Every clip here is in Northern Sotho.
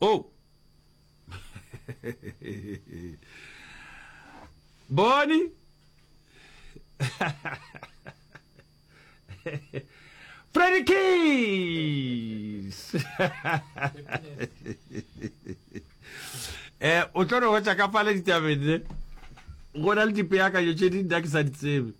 oh boni Freddy Keys eh o tlo re hotsa ka fale ditabeng ne go na le dipeakanyo tše di nna ke sa di tsebe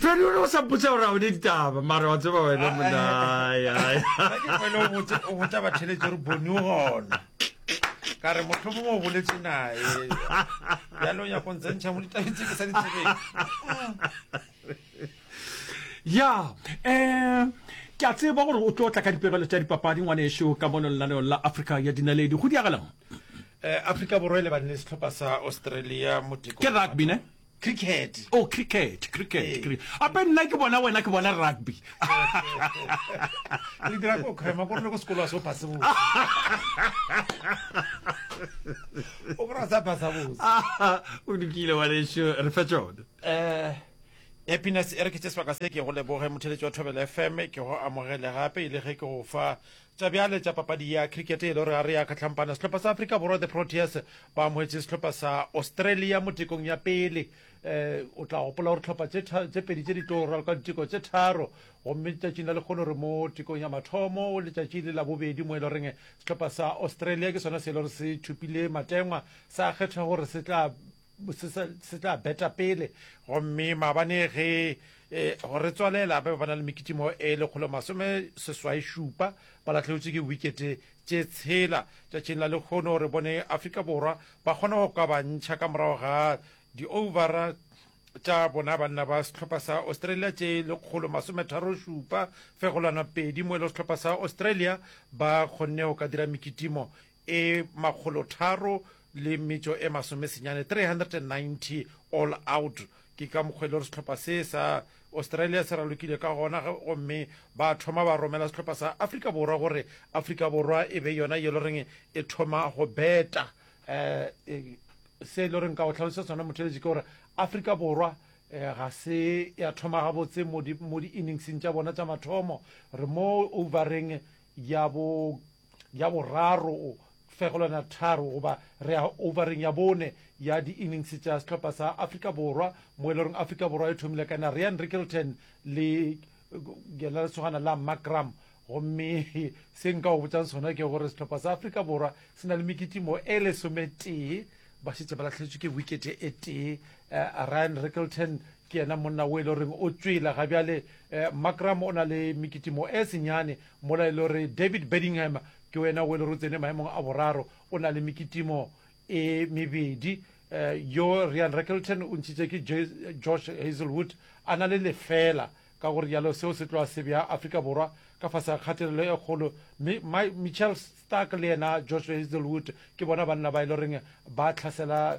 Feli o ne o sa mpotsa gore a o ne ditaba mara wa tseba wena monaayayakefeleo botsa batheletso gore bone o gona ka re motlho mongwe o boletse nae yalo ya go ntse ntšha mo ditabeng tse ke sa ditsebeng ya um ke a tseba gore o tlo tla ka dipegelo tša dipapadi ngwaneso ka mono lenaneong la africa ya dinaledi go diagalang um eh, africa borwa e lebaneng setlhopha sa australia moteko ke rugby ne Cricket. Oh, cricket, cricket, hey. Eh. cricket. Ape nna ke bona wena ke bona rugby. Re dira go khema go re go sekolo so pass bo. O go sa pass bo. O dikile wa le sho re fa tsone. Eh happiness e re ke tseswa ka se ke go leboge motheletsi wa thobela fm ke go amogele gape e le ge ke go fa Tša bjale tša papadi ya cricket e le gore gare ya kgahlampana sehlopha sa Afrika Borwa the Proteas ba amogetše sehlopha sa Australia mo tekong ya pele um o tla gopola gore tlhopha tše pedi tše di tlo raloka diteko tše tharo gomme letšatšing la lekgolo re mo tekong ya mathomo o letšatši le la bobedi mo e le goreng sehlopha sa Australia ke sona se e le gore se thupile matengwa sa kgetha gore se tla se se tla beta pele gomme maabane ge eh, go re tswalela ba ba na le mekitimo e lekgolo masome seswai šupa ba latlhegetswe ke wikete tše tshela tšatšing la lekgono re bone afrika borwa ba kgona go kabantšha ka morago ga di-overa tša bona banna ba sehlopha sa australia tše lekgolo masometharo šupa fegolwana pedi mo e le sehlopha sa australia ba kgonne go ka dira mekitimo e makgolotharo le metšo e masomesenyane, 390 all out. Ke ka mokgwa e le gore sehlopha se sa Australia se ralokile ka gona gomme ba thoma ba romela sehlopha sa Afrika Borwa gore Afrika Borwa e be yona ye le goreng e thoma go beta um se e le goreng ka go tlhalosa sona motheletši ke gore Afrika Borwa um ga se ya thoma gabotse mo di-inningseng tša bona tša mathomo re mo overeng ya bo ya boraro fegolwana tharo goba re ya overeng ya bone ya di-innings tša sehlopha sa afrika borwa mo e le goreng afrika borwa e thomile ka na ryan rickelton le yena lesogana la macram gomme se nka o botsang sona ke gore sehlopha sa afrika borwa se na le mekitimo e lesometee ba šetse ba latlhetswe ke wikete e tee uh, ryan rickelton ke yena monna o e le goreng o tswela ga bjale uh, macram o na le mekitimo e senyane Mola e le gore David Bedingham ke wena o e le gore o tsene maemong a boraro, o na le mekitimo e mebedi. Eh, yo Rian Rakelton o ntšhitše ke Josh Hazelwood a na le lefela, ka go rialo seo se tloa se bea Afrika Borwa ka fase ga kgatelelo e kgolo, mme Mitchell Starc le yena Josh Hazelwood ke bona banna ba e le goreng ba tlhasela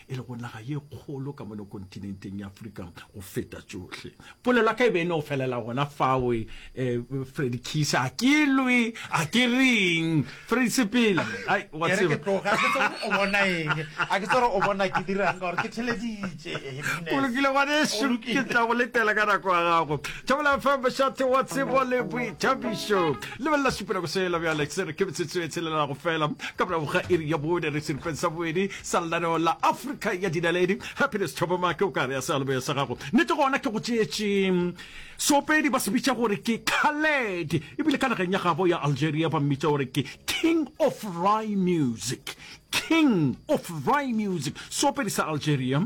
e lego naga ye kgolo ka mono kontinenteng ya Afrika go feta tšohle. Polelo ya ka e be e no felela gona fao. E, e, Freddy Kiss, a ke lwe, a ke reng? Freddy Sepela, ai, wa Ke re ke tseba. tloga ke tse o bona eng? A ke tsere o bona ke dirang ka gore ke theleditše. eh, Go Venus. lokile ngwanešu, Go lokile. ke tla go letela ka nako ya gago. Thobela FM, Bošate wa Tsebo le Boithabišo. Lebelela seponako sela bjale, se re ke metsotso e tshelela go fela ka morago ga iri ya bone re seripeng sa bobedi. sa lenaneo la Afrika ya Dinaledi. Happiness Thoboma, ke o ka re ya sealoboya sa gago? Nete gona ke go tšeetše seopedi, ba se bitša gore ke Khaled, ebile ka nageng ya gabo ya Algeria ba mmitša gore ke King of Rye Music. King of Rye Music, seopedi sa Algeria,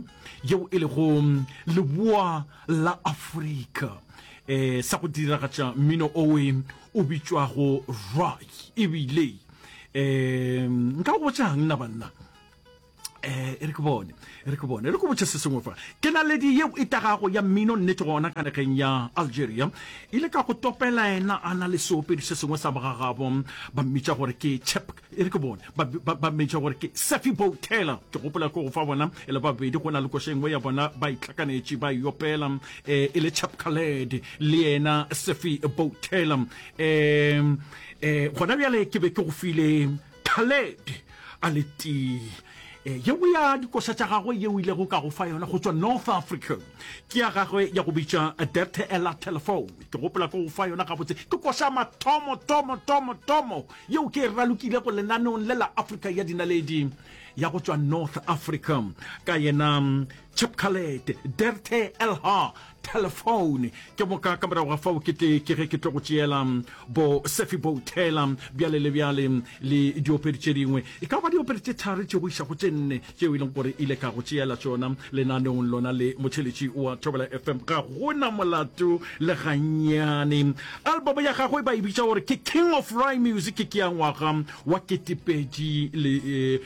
yeo e lego leboa la Afrika, eh, sa go diragatša mmino owe o bitšwago Rye, ebile um nka go botsang nna banna eh e re ke bone e re ke bone e re ko botse se sengwe fa ke na le di yeo e tagago ya mmino nnete gona ka nageng ya algeria e le ka go topela ena a na le seopedi se sengwe sa bogagabo ba mmitša gore ke chep e re ke bone ba mmitša gore ke safi bow taylor ke gopola ko go fa bona e le babedi go na le koša engwe ya bona ba itlhakanetše ba iopela um e le chep caled le yena safi bow taylor um E, gona bjale ke be ke go file thaled a le tee e, yeo ya dikoša tša gagwe yeo ilego ka go fa yona go tšwa north africa ke ya gagwe ya go bitša derte ela telefone ke gopola ke go fa yona gabotse ke koša mathomo tomo tomo tomo yeo ke e ralokile go lenaneong le la africa ya dinaledi ya go tšwa north africa ka yena Chapkalet, Derte Elha, telephone ke boka ka morago ga fao ke tle ke ge ke tlo go tšeela bo sefi boutela bjale le bjale le diopedi tše dingwe e ka ba diopedi tše thari tše go iša go tše nne tšeo e leng gore ile ka go tšeela tšona lenaneong lona le motšheletši wa thobela fm ga gona molato le gannyane album ya gagwe ba e bitša gore ke king of ry music ke ya ngwaga wa ketepedi le eh,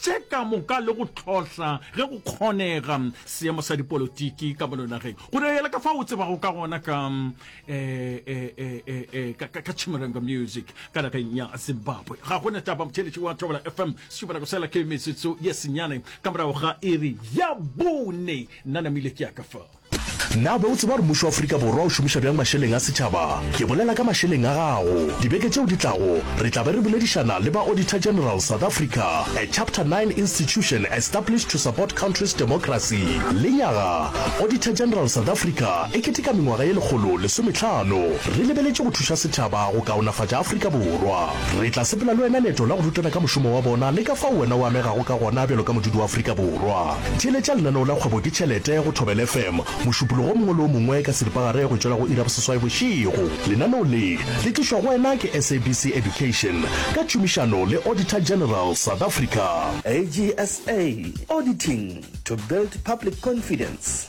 tše ka moka le go hlohla ge go kgonega seemo sa dipolotiki ka mono nageng go reela ka fa o tsebago ka gona ka ka chimurenga music ka nageng ya zimbabwe ga gona taba motheletši wa thobela fm sešubana go sela ke metsotso ye senyane ka morago ga iri ya bone nna namile ke ya ka fao Na be o tseba gore mmušo wa Afrika Borwa o šomiša bjang mašeleng a setšhaba? Ke bolela ka mašeleng a gago. Dibeke tšeo di tlago, re tla be re boledišana le ba Auditor General South Africa, a Chapter 9 institution established to support country's democracy. Lenyaga, Auditor General South Africa e keteka mengwaga ye lekgolo lesometlhano. Re lebeletše go thuša setšhaba go kaonafatša Afrika Borwa. Re tla sepela le wena leeto la go rutana ka mošomo wa bona le ka fao wena o amegago ka gona bjalo ka modudi wa Afrika Borwa. Theeletša lenaneo la Kgwebo ke Tšhelete go Thobela FM mošupologo o mongwe le o mongwe ka seripagare go tšwela go iri ya boseswai bošego. Lenaneo le, le tlišwa go wena ke SABC Education ka tšhomišano le Auditor General South Africa. AGSA, Auditing to build public confidence.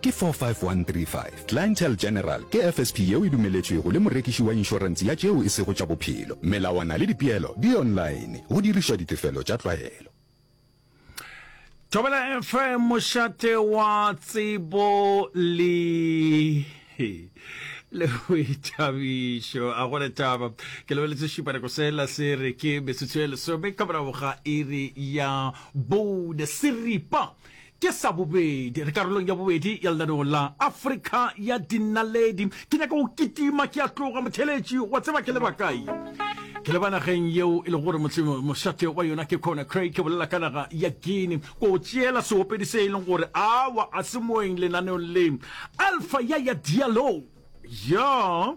ke 45135. Clientele General ke FSP yeo e dumeletšwego le morekiši wa inšorense ya tšeo e sego tša bophelo. Melawana le dipeelo di online, go dirišwa ditefelo tša tlwaelo. Thobela FM mošate wa tsebo le le boithabišo a go le taba ke lebeletse šupaneko sela se re ke metsotso e lesome ka morago ga iri ya bone seripa Ke sa bobedi re karolong ya bobedi ya lenaneo la Afrika ya Dinaledi. Ke nyaka go kitima ke a tloga, motheeletši. Wa tseba ke leba kae? Ke leba nageng yeo e lego gore mošate wa yona ke Conakry, ke bolela ka naga ya Guinea. Ko o tšeela seopedi se e leng gore awa a se moeng lenaneong le, Alpha Yaya Diallo. Ya.